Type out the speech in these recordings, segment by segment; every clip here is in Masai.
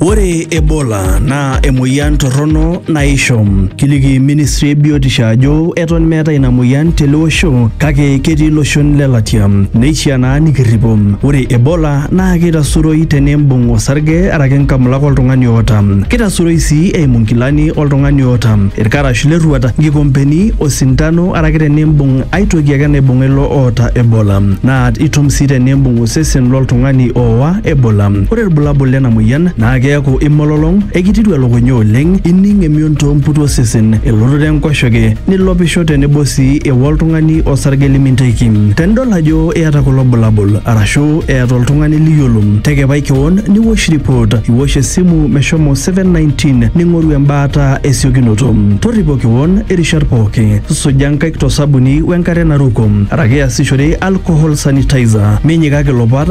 Ore Ebola naa emoyian torrono naisho. Kiliki ministry e biotisho ajo eton meeta ina moyian tele osho kake ketii iloshon le latia. Neishiaa naa nikirripo. Ore Ebola naa keitasuroi tenimbung osarge araki nkamulak oltung'ani oota. Keitasuroi sii eimu nkilani oltung'ani oota, ilkarash le rruat, nkikompeni, osintano araki tenimbung ai toki ake naibung'a ilo oota Ebola. Naa itum sii tenimbung osesen loltung'ani ooa Ebola. Ore ilbulabul lena moyian naa keaku imololong, ekititu elukunya oleng, ining emion too mputu osesen, elototo enkoshoke, nilopisho tenebo sii ewok oltung'ani osarge limintaiki. Tenidol ajo iyata kulo bulabul arashu eeta oltung'ani liyiolo, tekepai kewon niwosh ripot, iwosh esimu meshomo 719 ning'oru embaata esiokinoto. Torripo kewon irishat pooki, suja nkaik to sabuni wenkare naruko araki iasishore alcohol sanitizer. Minyikaki ilopat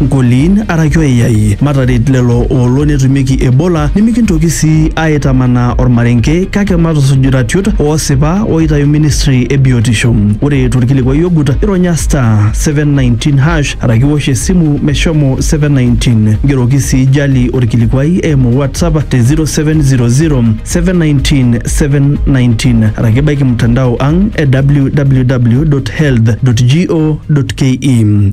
Nkoliin araki oiyai, mataret lelo oolo netumieki Ebola nimikintoki sii aaitamanaa olmarenke kake matusuj iratiot oosipa ooitayu ministry e biotisho. Ore tolkilikuai ogut, ironya *719# araki iwosh esimu meshomo 719. Ngeroki sii Jali olkilikuai eimu WhatsApp te 0700-719-719 araki ibaiki mtandao ang e www.health.go.ke.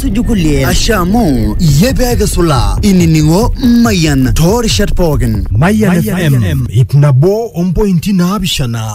suju kulie ashe amu iyie pee kisula inining'o mayian toorishat pookin Mayian FM, ip nabo ompointi naapishana